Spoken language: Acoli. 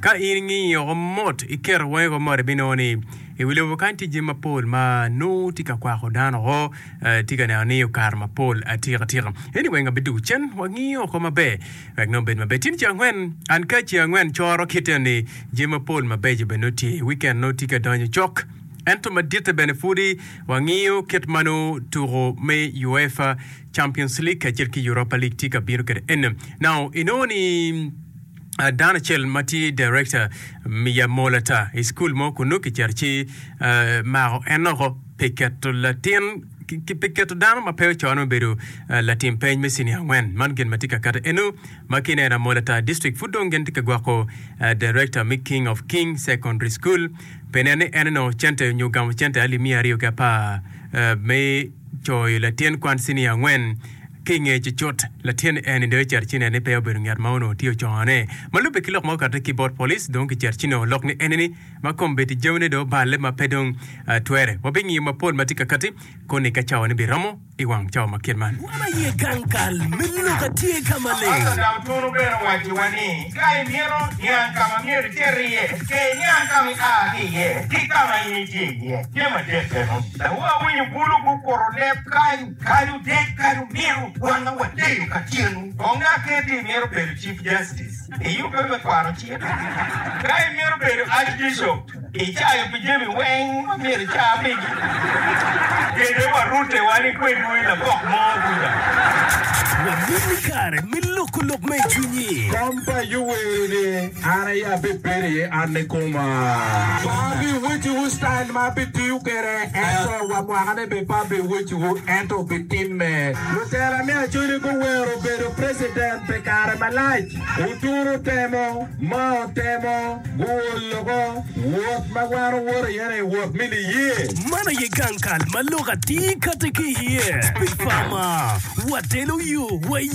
Ka in ingiyo woko mot, iketo wongi woko mot, ibinongo ni i wi lobo kany tye jami mapol ma nongo tye ka kwako dano woko, tye ka neno ni okato mapol atika tika. Anyway, ngat bidwogo cen, wangiyo woko maber wek nongo bed maber. Tye ni ceng angwen, an ka ceng angwen coro kit eno ni jami mapol mabeco bene nongo tye. Wikend nongo tye ka donyo cok. Ento maditte bene pwodi wangiyo kit ma nongo tuko me UEFA Champions League kacel ki Europa League tye ka bino kwede eno. Now, inongo ni. dano acel ma tye director mi yamol ata i school mo kun nongo kicito ci mako en oko pi keto latin pi keto dano ma pe ocoane me bedo latim peny me cinia angwen. Man gin ma tye ka kati eno ma kine en amol ata district pud dong gin tye ka gwoko director mi King of King Secondary School pi nen ni en onongo cente nyo gamo cente alip miya aryo ki apar me Coy, latin kwan cinia angwen, ki i ngeye cucut, latin Annie dong ecito ci neno ni peya obedo nget ma onongo tye ocongo ne. Ma lubbe ki lok ma okatte ki bot police, dong kicito ci nongo lok ni Annie ni ma kombeddi jami ne dong oballe ma pe dong twere. Wa bingiyo mapol ma tye ka kati koni ka cawa ne biromo i wang cawa ma kit man. Wan aye gang kal me lok atye ka maleng. Pastor Dang Tunu bene owaco wa ni. Ka imito niang ka ma myero iter iye, cer iniang ka ma ia ki iye ki ka ma in itye iye. Jami adek meno dawowa awinyo bulu gukuro leb kany. Kadi otek, kadi omiro, wan ma wadeyo ka tyenu, kong dok ket ni imito bedo Chief Justice, iyubbe me kwaro cik, ka imito bedo Archbishop, Icayo pi jami weng ma myero ica pigi. Kete wa rute wa ni kwedwu i labok mo kuca. Wamon ni kare me loko lok ma i cwinyi. Kom pa Ayub wero ni, An aye abibedo iye, an ni koma. Pe abiwecciwu citail ma abitiyo kwede, ento wa mwakane bene pe abiwecciwu, ento bitimme. Lutela me Acoli guwero bedo precedent pi kare malac. Oturu temo ma otemo guol loko wot ma wan owoto iye-ni, wot me niye. Man aye gang kal ma lok atir kati ki iye pi pama. Watelo yo wa.